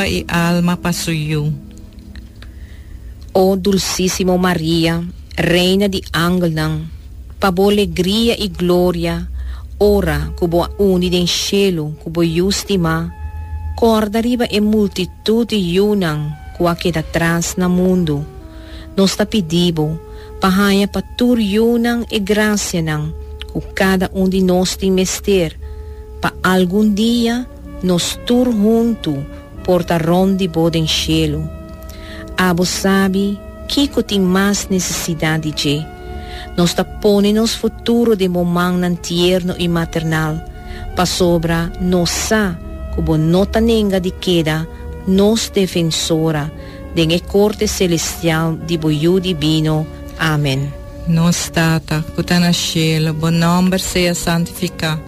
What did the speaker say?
pa i alma pa su yu. O dulsísimo Maria, Reina di angelnan, pa bo legria i gloria ora ku bo a uni den shelu ku bo Yu stimá, kòrda riba e multitut di yunan ku a keda tras na mundu. Nos ta pidi bo pa haña pa tur yunan e grasianan ku kada un di nos tin mester pa algun dia Nos tur huntu por ta rond di Bo den shelu. Abo sabi kico tin mas necesidad di dje. Nos ta pone nos futuro den Bo mannan tierno y maternal, pasobra nos sa cu Bo no ta nenga di keda nos Defensora den e corte celestial di Bo Yu Divino. Amen. Nos Tata, cu ta na shelu, Bo nomber sea santifica.